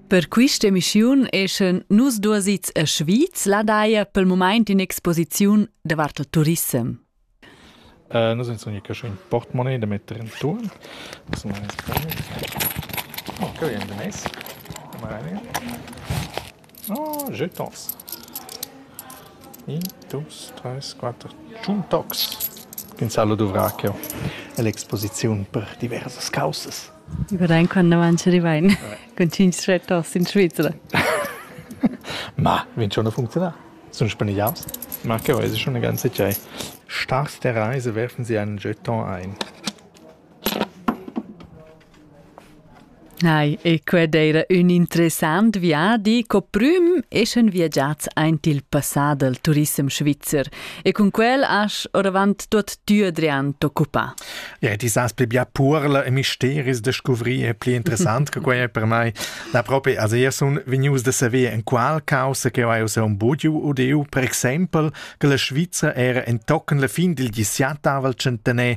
Per quist'emissiun eschan nus duos its a Schwyz la daja pel mumaint in exposiziun davart il turissem. Äh, noi sun unic ün portemonnaie da metter intuorn. Sun oh, che vegn da mess. Oh, jeu tons. In, dus, treis, quatter. Tschun tocs. Pensar lu duvrar cheu ell'exposiziun per diversas caussas. Über dein Kondomanche Rivain. Con cinc stretters in Svizzera. Ma, vin schon funziona? Sun spanigliaus? Ma che vuoi, schon eine ganze Zeit. Stars der Reise werfen sie einen Jeton ein. Nei, e qued eira ün interessant viadi co prüm eschan viagiats aint il passà dal turissem svizzer e cun quel asch oravant tuot tü Adrian t'occupà. Ja, die saas pli bia puorla e misteris da scuvrir e pli interessant che quai è per mai. La proprio als eir sun vegnius da saver in qual causa che eu ho un bugiu udeu, per exempel che la Svizra era entochen la fin dil XVII tavel centener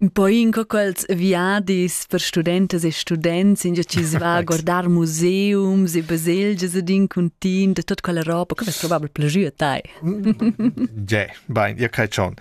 Un po in co quels viadis per studentas e students, in chi se va a guardar museums e baselgias ed in cuntin da tut quella roba, che vess probabel plajü a tai. Ge, bain, ihr crei schon.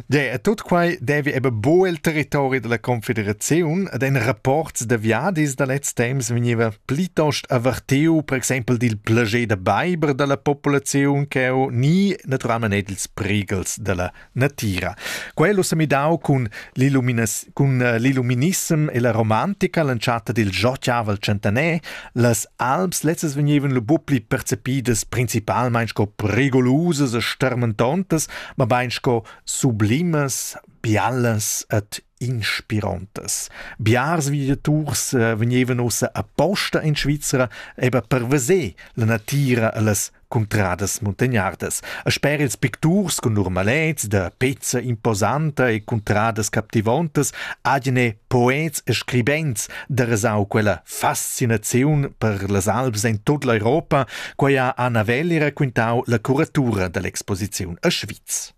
Ge, e tut quai devi eben bo il territori della Confederazione ed in rapports da viadis da letz temps veniva plitost averteu, per exempel dil plager da beiber della populazione che ho ni naturalment ils prigels della natira. Quel ho semidau cun l'illuminas- cun eh, l'illuminissem e la romantica l'entschatta dil Giotiavel centenaire. Las Alps lezzas vegnevan lu buc pli percepidas principalmein sco prigolosas e stermentontas, ma bein sco sublimas, biallas et inspirontas. Biars viagiaturs eh, vegnevan ussa aposta in Svizra eben per veser la natira e las cuntradas muntagnardas. E sper ils picturs con normalets da pezza imposanta e cuntradas captivontas, agene poets e scribents da resau quella fascinaziun per las Alps in tut l'Europa, quai ha Anna Welli raquintau la curatura dell'exposiziun a Schwyz.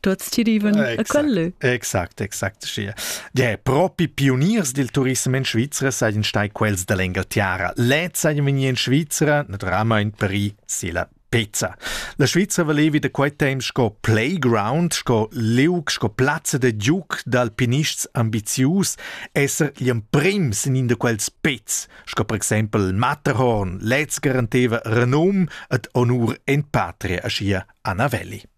tuots ti riven a quello. Exact, exact, schia. Ja, propi pioniers del turism in Svizzera sajan stai quels da l'Engaltiara. Lez sajan vegni in Svizzera, naturalmein per i sela pezza. La Svizzera valevi da quei temps sco playground, sco liug, sco plazza da giuc d'alpinists ambizius, esser gli emprims in in de quels pezz, sco per exempel Matterhorn, lez garanteva renum et honur in patria, aschia Anna Velli.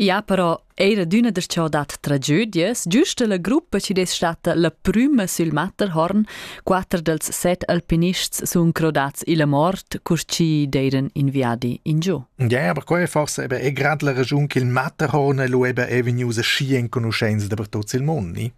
Ja, però eir adüna das cha ho dat tragödias, giüsta la gruppa chi'd es statta la prüma sül Matterhorn, quatter dals set alpinists sun crodats illa mort, cur chi d'eiran in viadi ingiò. Ja, aber quai forse eben è grad la ragiun ch'il Matterhorn è lu eben è vegnius aschi enconuschents dapertut sil mund, ni?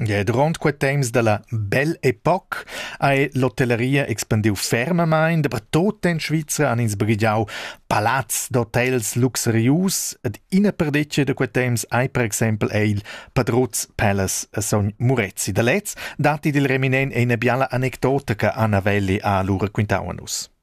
Gie, duront quei temps dalla bell'epoca ha l'hotelleria expandiu fermamein dapertut en Svizra, han ins baghegiau palazs d'hotels luxurius ed ina perdetga da quei temps ei per exempel ei il Padruz Palace a sogn Murezi. Da lez datti dil reminent ina biala anecdota che Anna Welli ha lu raquintau a nus.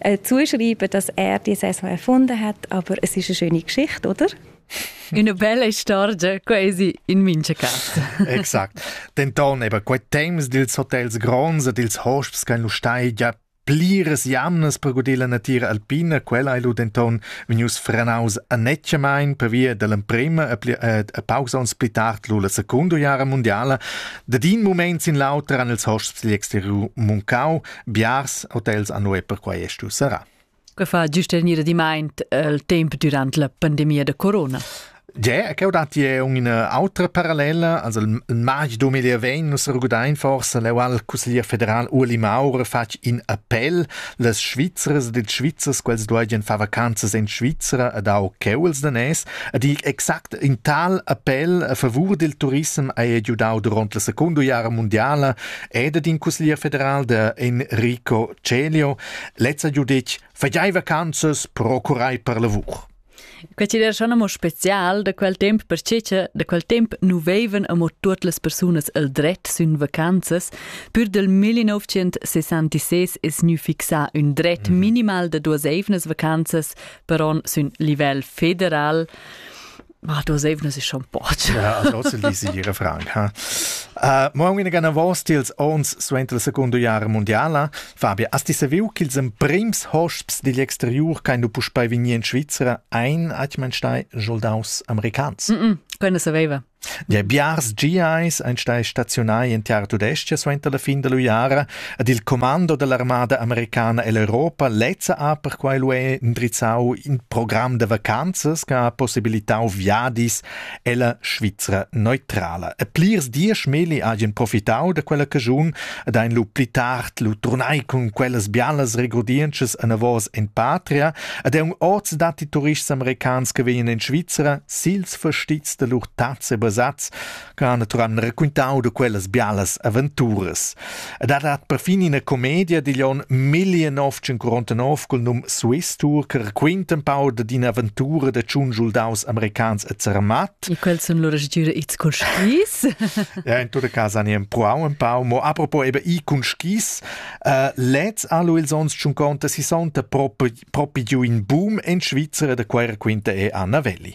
äh, zuschreiben, dass er die Saison erfunden hat, aber es ist eine schöne Geschichte, oder? Una bella storia quasi in mincha casa. Exakt. Denton eben quei temps dils hotels gronds e dils hosps ch'ein lu stai già pliras jamnas per gudir la natira alpina, quella ei lu denton vegnius frenaus annetgemain per via dell'emprema e, pli, äh, e pausa ons pli tard lu la secunda jara mondiala. Da din moment sin l'auter han ils hosps digl exteriur muncau Biars hotels hanno e perquai è stu serrà. Che fa giustenir dimaint il tempo durant la pandemia da corona? Ge, che ho dati è una autra parallela, also il march 2020 nus rugudain forse l'eual Cusseglier federal Uli Maurer fatg in appell, las Svizzers de Svizzers quels dueigien fa vacanzas in Svizzera ad au cheuls da nes, ad ich exakt in tal appell a favur del turism hai giudau durant la secondo jara mondiala e dad in cusglier federal da Enrico Celio lezza giu detg fai vacanzas procurai per lavur. Questi era schon amo spezial da quel temp perché che da quel temp nu vevan amo tuot las persunas el dret sün vacanzas, pur del 1966 es gnü fixà ün dret mhm. minimal da duas eivnas vacanzas per on sün livel federal. Ma du sevna si schon poch. Ja, also lisi ihre Frank, ha. Uh, Morgen in gana vos tils ons suent la seconda jara mondiala, Fabia, asti saviu ch'ils emprims hosps digl exteriur kein du puspei vegnir in Svizzera ein, at man stai, soldaus americans. Mm -mm, quella saveva. Der Biars GIs ein stai stationai in tiar tudestia suenter la fin della jara, Ed il commando dall'armada americana ell'Europa lezza ha perquai lu indrizzau in program da vacanzas che ha possibilitau viadis ella Svizra neutrala. E plirs diesch meli hagien profitau da quella caschun ed ein lu pli tard lu turnai cun quellas bialas regurdientschas anavos en patria ed ein oz datti turists americans che vegnan in Svizra sils fastizs da lur tazze basats ch'ha naturan raquintau da quellas bialas aventuras. Ed ha dat perfin ina comedia digl onn 1949 col num Swiss Tour che raquinta un pau da d'ina aventura da tschun schuldaus americans e zermat. E quels sun lura stüra its cun skis. ja, in tutte casa ne empruau un pau, mo apropos eben i cun skis, uh, lez allo ils ons tschun conta si sonta propi propi giù in boom in Svizzera da quai raquinta e Anna Velli.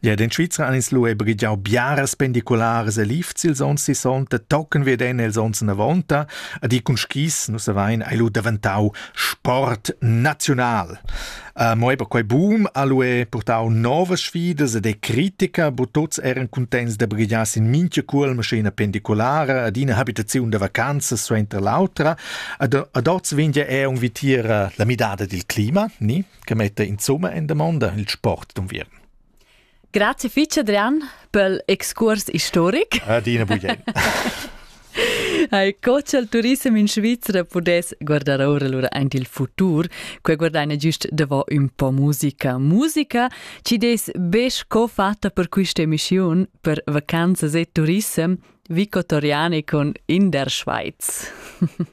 Ed in Svizra han ins lu e brigiau biaras pendicularas e lifts ils onns sissonta, tochen veden els onns novonta, ed i cun skis, nus havein ei lu daventau sport naziunal. Uh, mo eba quei boom ha lu e purtau novas sfidas ed e critica, bu tuts eran contents da brigiar sin mincha cuol maschina pendiculara ad ina habitaziun da vacanzas suenter l'autra, ad, ad oz vegn ja er un vitier la midada dil clima, ni? che metta insumma en damonda il sport d'unviern. Grazie fitg Adrian per l'excurs historic. Adina bugen. Co il turismo in Svizzera pudesse guardare ora allora anche il futuro, che guardare giusto davò un po' musica. Musica ci des besch co fatta per questa emissione per vacanzas e turismo vicotoriane con in der Schweiz.